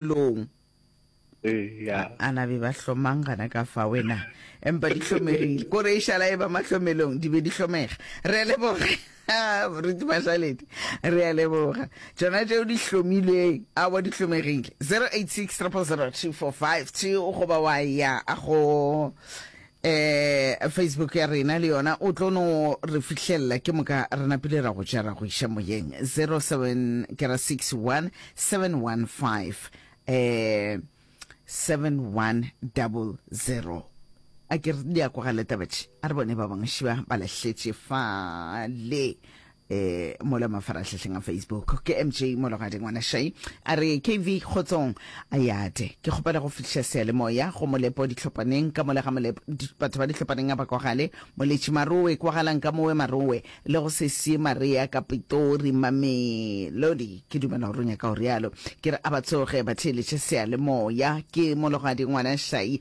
Bophelong. Eya. A na be ba hlomang gana ka fa wena. Empa di hlomegile. Kore e šala e ba mahlomelong di be di hlomega. Re leboge. Moruti Mašaledi. Re a leboga. Tšona tšeo di hlomilweng a wa di hlomegile. 086 000 2452 goba wa ya go Eh, facebook ya rena le yona o tlo no re fihlelela ke moka re napile ra go tšea ra go iša moyeng 07 ke ra 61 715 eh 7100 a ke re di a kwagale tabatše a re bone ba bangwe šiba ba lahletše fale eh mola mafaratlhatlheng a facebook ke mj mologadi ngwana shai a re kv kgotsong a yate ke kgopela go fihliša sealemoya go molepo ditlhopaneng ka mola ga molepo batho ba ditlhopaneng a ba kwagale moletši marowe kwagalang ka mowe marowe le go se sie marea ka pitori mamelodi ke dumela go ronya ka go rialo ke re a ba tsoge ba theeletše sealemoya ke mologadi ngwana shai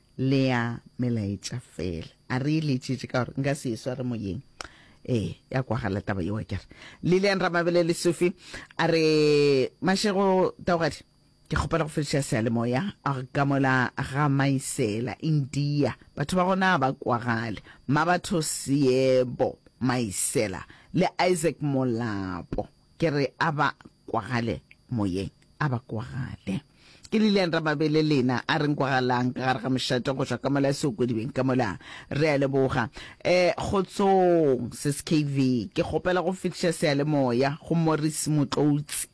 le ya melaetša fela a re e letšetše ka gore nka se e sware moyeng ee ya kwagala taba yewa kere lilian ramabele le sufi a re mašego taogadi ke kgopela go fediša sealemoya a ka mola ga maisela india batho ba gona ba kwagale ma batho seebo maisela le isaac molapo ke re a ba kwagale moyeng a ba kwagale. Ke Lilian Rababe le lena a reng kwagalang ka gare ga mošate go tšwa ka mola se o kwedibeng ka mola re a leboga eh kgotsong skv ke kgopela go fetiša seyalemoya go Morris Motloutsi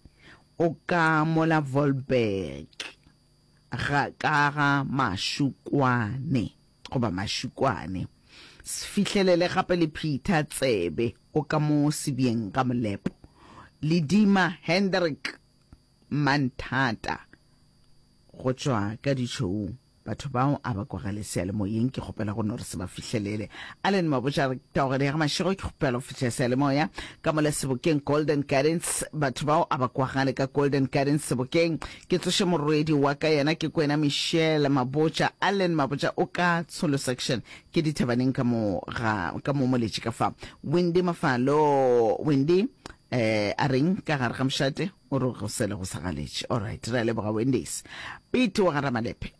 o ka mola Volberg ga ka ga mašukwane goba mašukwane. Se fihlelele gape le Peter Tsebe o ka mo sebjeng ga molepo. Ledima Hendrik Manthata go tšwa ka ditšhoung. Batho bao a ba kwagale seyalemoyeng ke kgopela go no re se ba fihlelele. Allen Mabotja a re taogelo ya ga Mašego ke kgopela go fihla seyalemoya ka mola Sebokeng Golden Gardens. Batho bao a ba kwagale ka Golden Gardens Sebokeng Ke tsoše morwedi waka yena ke kwena Michelle Mabotja, Allen Mabotja o ka Tsholo section ke dithabaneng ka mo ga ka mo moletši ka fa. Wendy Mafalo Wendy eh a reng ka gare ga mošate o re go sele go sa galetše. Alright re a leboga Wendy's. Pete wa ga Ramalepe.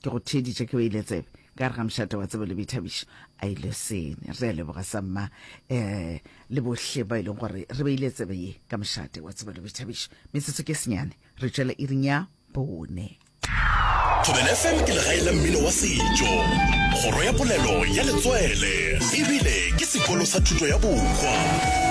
Ke go theeditše ke beile tsebe ka gare ga mošate wa tsebo le boithabišo. A e lesene. Re a leboga sa mma eh, le bohle ba e leng gore re beile tsebe ye ka mošate wa tsebo le boithabišo. Metsotso ke senyane, re tšwela iring ya bone. Thobela FM ke legae la mmino wa setšo, kgoro ya polelo ya letswele ebile ke sekolo sa thuto ya bokwa.